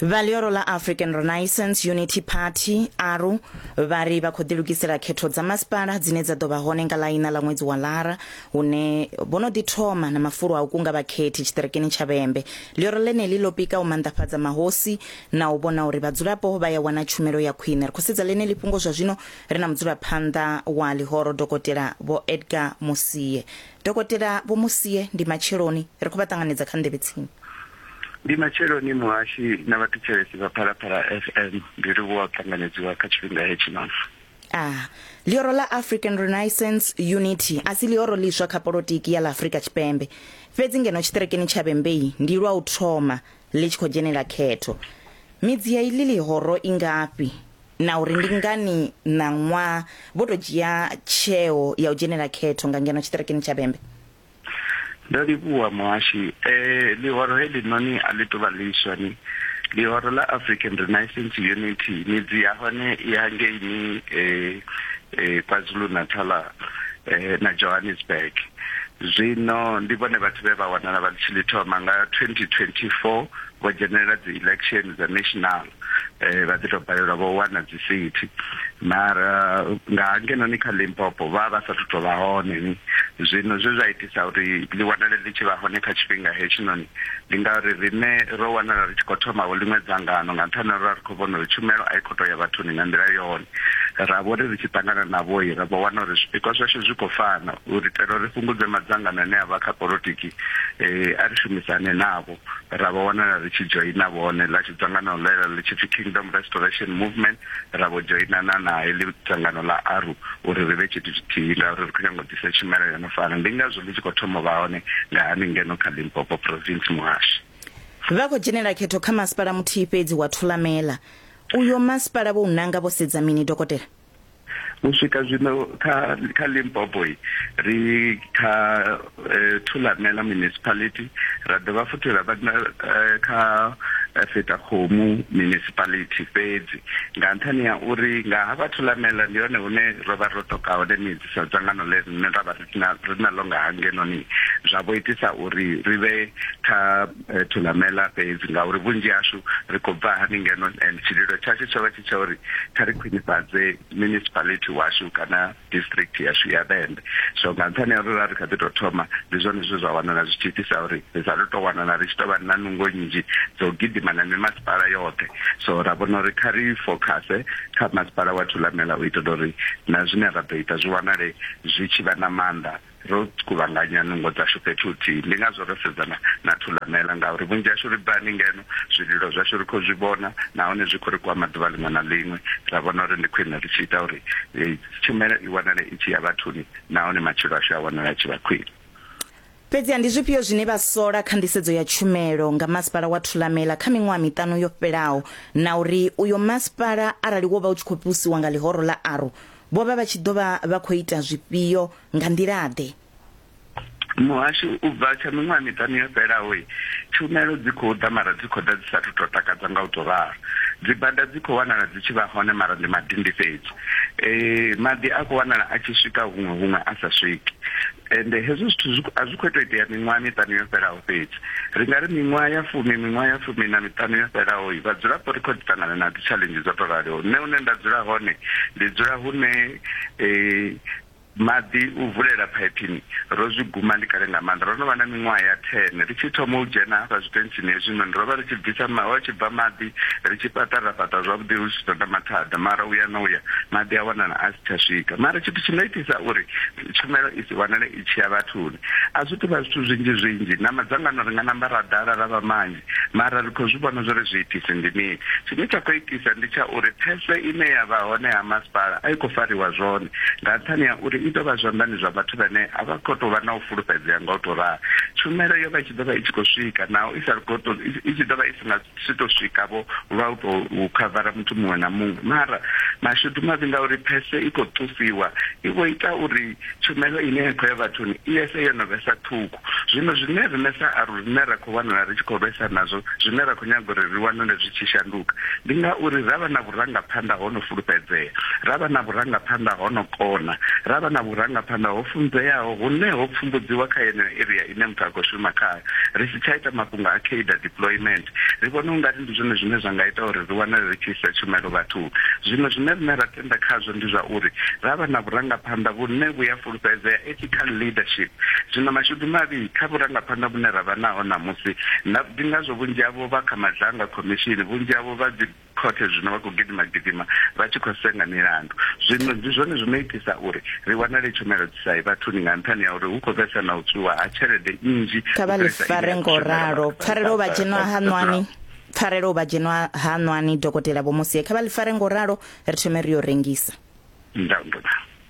vha ḽioro ḽa african renaissance unity party aru vha ri vha khou ḓilugisela khetho dza masipala dzine dza ḓo vha hone nga ḽaina ḽa ṅwedzi wa lara hune vho no ḓi thoma na mafulo a u kunga vhakhethi tshiṱirikini tsha vhembe ḽioro ḽeneḽi ḽo pika u manḓafhadza mahosi na u vhona uri vhadzulapo vha ya wana tshumelo ya khwine ri khou sedza ḽeneḽi fhungo zwa zwino ri na mudzulaphanḓa wa ḽihoro dokotela vho edgar musie Dokotela Vho Musie, Ndi matsheloni. Ri khou vha ṱanganedza kha nḓevhe tsini. Ndi matsheloni muhashi na vhathetshelesi vha Phalaphala FM. Ndi livhuwa u ṱanganedziwa kha tshifhinga hetshi mavu. A. Ḽihoro ḽa African Renaissance, Unity, a si ḽihoro ḽiswa kha polotiki ya ḽa Afrika Tshipembe. Fhedzi ngeno tshiṱerekeni tsha Vhembei ndi lwa u thoma ḽi tshi khou dzhenela khetho. Midzi ya iḽi ḽihoro i ngafhi? na uri ndi ngani ṋaṅwa vho tou dzhia tsheo ya u dzhenela khetho nga ngeno tshiṱirikini tsha Bembe. Ndo livhuwa muhashi. E, ḽihoro heḽinoni a ḽi tou vha ḽiswa ni. Ḽihoro ḽa African Renaissance Unity midzi ya hone i hangeini e, e, KwaZulu-Natal e, na Johannesburg. Zwino ndi vhone vhathu vhe vha wanala vha tshi ḽi thoma nga 2024 vho dzhenelela dzi election dza national. eh vha ḓi to balelwa vho wana dzi sithi mara nga hangenoni kha Limpopo vha vha sa thu vha hone zwino zwe zwa itisa uri ḽi wanale ḽi tshi vha hone kha tshifhinga hetshinoni ndi ngauri riṋe ro wanala ri tshi khou thoma vho ḽiṅwe dzangano nga nṱhani uri ri khou vhona uri tshumelo a i khou tou ya vhathuni nga nḓila yone ra vho ri ri tshi ṱangana na vhoi ra vho wana uri zwipikwa zwashu zwi khou fana uri itela uri fhungudze madzangano ane a vha kha politiki eh a ri shumisane navho ra vho wanala ri tshi dzhoina vhone ḽa tshi dzangano ḽe ḽa ḽi tshi pfi Kingdom Restoration Movement, ra vho dzhoinana na heḽi dzangano ḽa ARU uri ri vhe tshithu tshithihi ngauri ri khou nyanga u ḓisa tshumelo yo no fana. Ndi ngazwo ḽi tshi khou thoma u vha hone nga hani ngeno kha Limpopo Province Muhasho. Vha khou dzhenela khetho kha masipala muthihi fhedzi wa Thulamela. Uyo masipala vho u nanga vho sedza mini, Dokotela? u swika zwino kha kha Limpopo ri kha eh, Thulamela municipality ra dovha futhi ra vha eh, kha eh, Fetakhomu municipality fhedzi nga nṱhani ya uri nga ha vha Thulamela ndi hone hune ro vha ro toka hone midzi sa dzangano ḽe rine ra vha ri na ḽo nga hangenoni zwa vho itisa uri ri vhe kha eh, thulamela fhedzi ngauri vhunzhi hashu ri khou bva hani ngeno and tshililo tshashu tsho vha tshi tsha uri kha ri khwinifhadze municipality washu kana district yashu ya vhembe so nga nṱhani ya uri ra ri kha ḓi tou thoma ndi zwone zwe zwa wanala zwi tshi itisa uri ri sa ri tou wanala ri tshi tou vha na nungo nnzhi dzo gidima na mimasipala yoṱhe so ra vhona uri kha ri fokhase kha masipala wa thulamela u itela uri na zwine ra ḓo ita zwi wanale zwi tshi vha na maanḓa ro kuvhanganya nungo dzashu fhethu huthihi. Ndi ngazwo ro sedzana na Thulamela, ngauri vhunzhi hashu ri bva haningeno, zwililo zwashu ri khou zwi vhona nahone zwi khou ri kwama ḓuvha ḽiṅwe na ḽiṅwe. Ra vhona uri ndi khwine ri tshi ita uri tshumelo i wanale i tshi ya vhathuni nahone matshilo ashu a wanale a tshi vha khwine. Fhedziha ndi zwifhio zwine vha sola kha nḓisedzo ya tshumelo nga masipala wa Thulamela kha miṅwaha miṱanu yo fhelaho na uri uyo masipala arali wo vha u tshi khou fhiusiwa nga ḽihoro ḽa aru Vho vha vha tshi ḓo vha vha khou ita zwifhio? Nga nḓila-ḓe? Muhasho, U bva tsha miṅwaha miṱanu yo fhelaho, tshumelo dzi khou ḓa mara dzi khou ḓa dzi sa athu tou takadza nga u tou ralo. Dzibada dzi khou wanala dzi tshi vha hone mara ndi madindi fhedzi. Maḓi a khou wanala a tshi swika huṅwe, huṅwe a sa swiki. ende hezwo zwithu a zwi khou tou itea miṅwaha miṱanu yo fhelaho fhedzi ri nga ri miṅwaha ya fumi miṅwaha ya fumi na miṱanu yo fhelaho vhadzulapo ri khou ḓi ṱangana na dzitshaḽenzhi dzo tou raliho nṋe hune nda dzula hone ndi dzula hune um maḓi u vulela phaipini ro zwi guma ndi kale nga maanḓa ro no vha na miṅwaha ya ten ri tshi thoma u dzhena hafha zwitentsini hezwinoni ro vha ri tshi bvisa ho tshi bva maḓi ri tshi fhaṱa ra fhaṱa zwavhuḓi hu si ṱoḓa mathada mara uya na uya maḓi a wanala a si tsha swika mara tshithu tshi no itisa uri Tshumelo i si wanale i tshi ya vhathuni a zwi tou vha zwithu zwinzhi zwinzhi. Na madzangano ri nga namba ra ḓala ra vha manzhi, mara ri khou zwi vhona zwa uri zwiitisi ndi mini. Tshine tsha khou itisa ndi tsha uri phese ine ya vha hone ha masipala a i khou fariwa zwone nga nṱhani ha uri i ḓo vha zwanḓani zwa vhathu vhane a vha khou tou vha na u fulufhedzea nga u tou ralo. Tshumelo yo vha i tshi ḓo vha i tshi khou swika naho i sa khou tou, i tshi ḓo vha i si nga. si to swika vho lwa u tou khavara muthu muṅwe na muṅwe mara mashudu mavhi ngauri phese i khou ṱufiwa i vho ita uri tshumelo ine ya khou ya vhathuni i yese yo no vhesa ṱhukhu zwino zwine rine sa aru rine ra khou wanala ri tshi khou lwesa nazwo zwine ra khou nyaga uri ri wanale zwi tshi shanduka ndi ngauri ra vha na vhurangaphanḓa ho no fulufhedzea ra vha na vhurangaphanḓa ho no kona ra vha na vhurangaphanḓa ho funzeaho hune ho pfumbudziwa kha yeneyo area ine muthu a khou shuma khayo. Ri si tsha ita mafhungo a cadre deployment, ri vhona u nga ri ndi zwone zwine zwa nga ita uri ri wanale ri tshi isa tshumelo vhathuni. Zwino zwine riṋe ra tenda khazwo ndi zwa uri ra vha na vhurangaphanḓa vhune vhu a fulufhedzea, ethical leadership. Zwino mashudu mavhi kha vhurangaphanḓa vhune ra vha naho ṋamusi, ndi ngazwo vhunzhi havho vha kha madzhanga khomishini, vhunzhi havho vha dzi. Khothe zwino vha khou gidima-gidima vha tshi khou senga milandu. Zwino ndi zwone zwi no itisa uri ri wanale tshumelo dzi sa ye vhathuni nga nṱhani ha uri hu khou vhesa na u tswiwa ha tshelede nnzhi u fhirisa ine ya khou shumelwa vhathu vha Kha vha ḽi fare nga u ralo. Pfarelo u vha dzhenwa haṋwani. Pfarelo u vha dzhenwa haṋwani, Dokotela Vho Mosie. Kha vha ḽi fare nga u ralo, ri thome ri yo rengisa. Nda, nda.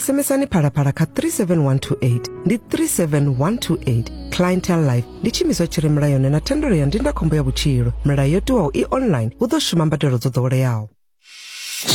SMSani phalaphala kha 37128 ndi 37128 clientele life ndi tshiimiswa tshi re mulayoni na thendelo ya ndindakhombo ya vhutshilo milayo yo tiwaho i online hu ḓo shuma mbadelo dzo ḓoweleaho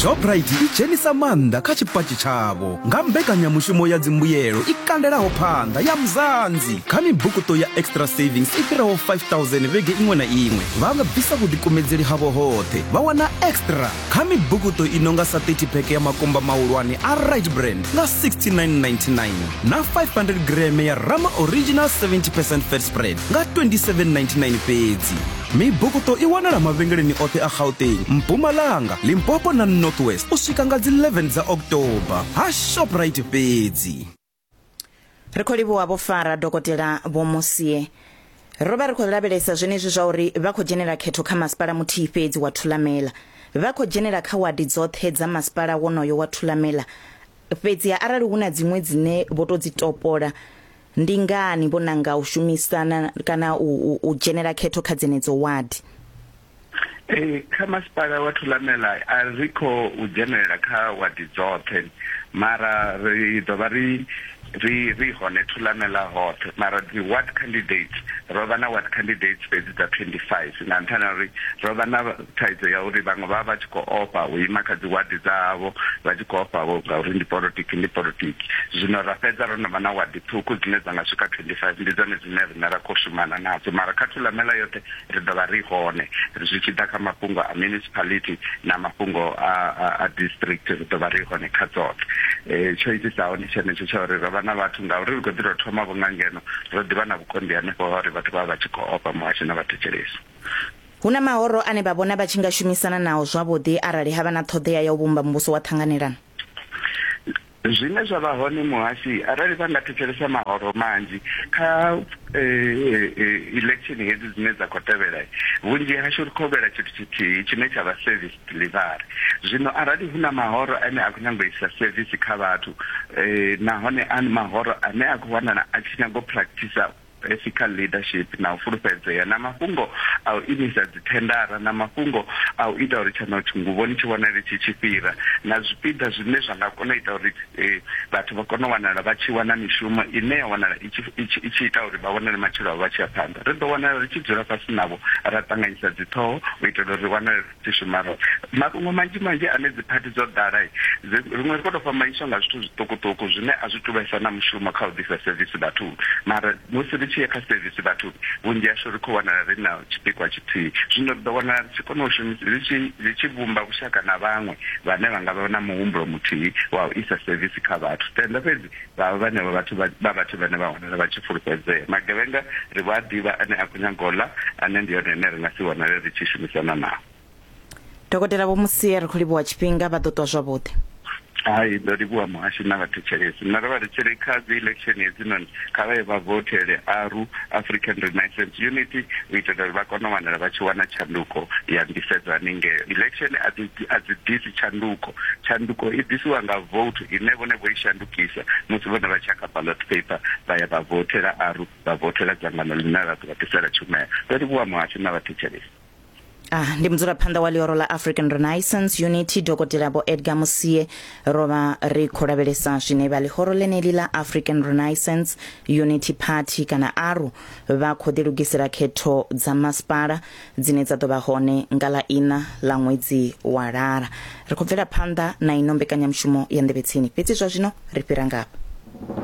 shoprite i dzhenisa maanḓa kha tshipatshi tshavho nga mbekanyamushumo ya dzimbuyelo i kandelaho phanḓa ya mzanzi kha mibukuto ya extra savings i fhiraho 5000 vhege iṅwe na iṅwe vha nga bvisa vhuḓikumedzeli havho hoṱhe vha wana extra kha mibukuṱo i no nga sa 30 pheke ya makumba mahulwane a right brand nga 6999 na 500 greme ya rama original 70 percent fat spread nga 2799 fhedzi mibukuṱo i wanala mavhengeleni oṱhe a gauteng mpumalanga limpopo na northwest u swika nga dzi 11 dza october ha shoprite fhedzi ri khou livhuwa vho fara dokotela vho musie ro vha ri khou lavhelesa zwenezwi zwa uri vha khou dzhenela khetho kha masipala muthihi fhedzi wa thulamela vha khou dzhenela kha wadi dzoṱhe dza masipala wonoyo wa thulamela fhedzi arali hu na dziṅwe dzine vho tou dzi topola ndi ngani vho nanga u shumisana kana u, u, u dzhenela khetho kha dzenedzo wadi Ee, kha masipala wa Thulamela a ri kho u dzhenelela kha wadi dzoṱhe mara ri ḓo vha ri ri ri hone Thulamela hoṱhe mara dzi ward candidates ro vha na ward candidates fhedzi dza 25 nga nṱhani ha uri ro vha na thaidzo ya uri vhaṅwe vha vha vha tshi khou ofha u ima kha dzi wadi dzavho vha tshi khou ofha vho ngauri ndi politiki ndi politiki zwino ra fhedza ro no vha na wadi ṱhukhu dzine dza nga swika 25 ndi dzone dzine riṋe ra khou shumana nadzo mara kha Thulamela yoṱhe Ri ḓo vha ri hone. Zwi tshi ḓa kha mafhungo a municipality na mafhungo a, a, a district, ri ḓo vha ri hone kha dzoṱhe. E, tsho itisaho ndi tshenetsho tsha uri ro vha na vhathu, ngauri ri khou ḓi tou thoma vho nga ngeno, ro ḓi vha na vhukonḓi hanefho ha uri vhathu vha vha vha tshi khou ofha muhasho na vhathetshelesi. Hu na mahoro ane vha vhona vha tshi nga shumisana nao zwavhuḓi arali ha vha na ṱhoḓea ya u vhumba muvhuso wa ṱhanganelano? Zwine zwa vha hone muhasi arali vha nga thetshelesa mahoro manzhi kha election hedzi dzine dza khou tevhela vhunzhi hashu ri khou lwela tshithu tshithihi tshine tsha vha service delivery zwino arali hu na mahoro ane a khou nyanga u isa service kha vhathu nahone a mahoro ane a khou wanala a tshi nyanga u practice ethical leadership na u fulufhedzea, na mafhungo a u imisa dzithendara, na mafhungo a u ita uri tshanothi nguvhoni tshi vhonale tshi tshi fhira, na zwipiḓa zwine zwa nga kona u ita uri vhathu vha kone u wanala vha tshi wana mishumo ine ya wanala i tshi i tshi ita uri vha vhonale matshilo avho vha tshi ya phanḓa. Ri ḓo wanala ri tshi dzula fhasi navho ra ṱanganyisa dziṱhoho u itela uri ri wanale. dzi shumaho. Mafhungo manzhi manzhi ane dziphathi dzo ḓala, riṅwe ri khou tou fhambanyiswa nga zwithu zwiṱukuṱuku zwine a zwi tu vhesa na mushumo kha u ḓisa sevisi vhathuni. Mara musi ri tshi ya kha sevisi vhathuni, vhunzhi hashu ri khou wanala ri na tshipikwa tshithihi. Zwino ri ḓo wanala ri tshi kona u shumisa, ri tshi, ri tshi vhumba vhushaka na vhaṅwe vhane vha nga vha na muhumbulo muthihi wa u isa sevisi kha vhathu. Tenda, fhedzi Vha vhenevha vhathu vha vha vhathu vhane vha wanala vha tshi fulufhedzea. Magevhenga ri vho a ḓivha ane a khou nyaga u ḽa, ane ndi one ane ri nga si vhonale ri tshi shumisana nao. Dokotela Vho Musie ri khou livhuwa tshifhinga, vha ḓo ṱwa zwavhuḓi. Hai, ndo livhuwa muhasho na vhathetshelesi. Nṋe ro vha ri tshi ri kha dzi election hedzinoni kha vha ye vha vothele ARU, African Renaissance Unity, u itela uri vha kone u wanala vha tshi wana tshanduko ya nḓisedzo haningeo. Election a dzi a dzi ḓisi. ḓisi tshanduko. Tshanduko i ḓisiwa nga voutu ine vhone vho i shandukisa musi vhone vha tshi ya kha ballot paper vha ya vha voutela aru, vha voutela dzangano ḽine ḽa ḓo vha ḓisela tshumelo. Ndo livhuwa muhasho na vhathetshelesi. A, ndi mudzulaphanḓa wa ḽioro ḽa African Renaissance Unity Dokotela Vho Edgar Musie. Ro vha ri khou lavhelesa zwine vha ḽihoro ḽeneli ḽa African Renaissance Unity Party kana ARU vha khou ḓilugisela khetho dza masipala dzine dza ḓo vha hone nga ḽa ina ḽa ṅwedzi wa lara ri khou bvela phanḓa na ino mbekanyamushumo ya nḓevhetsini fhedzi zwa zwino ri fhira ngafha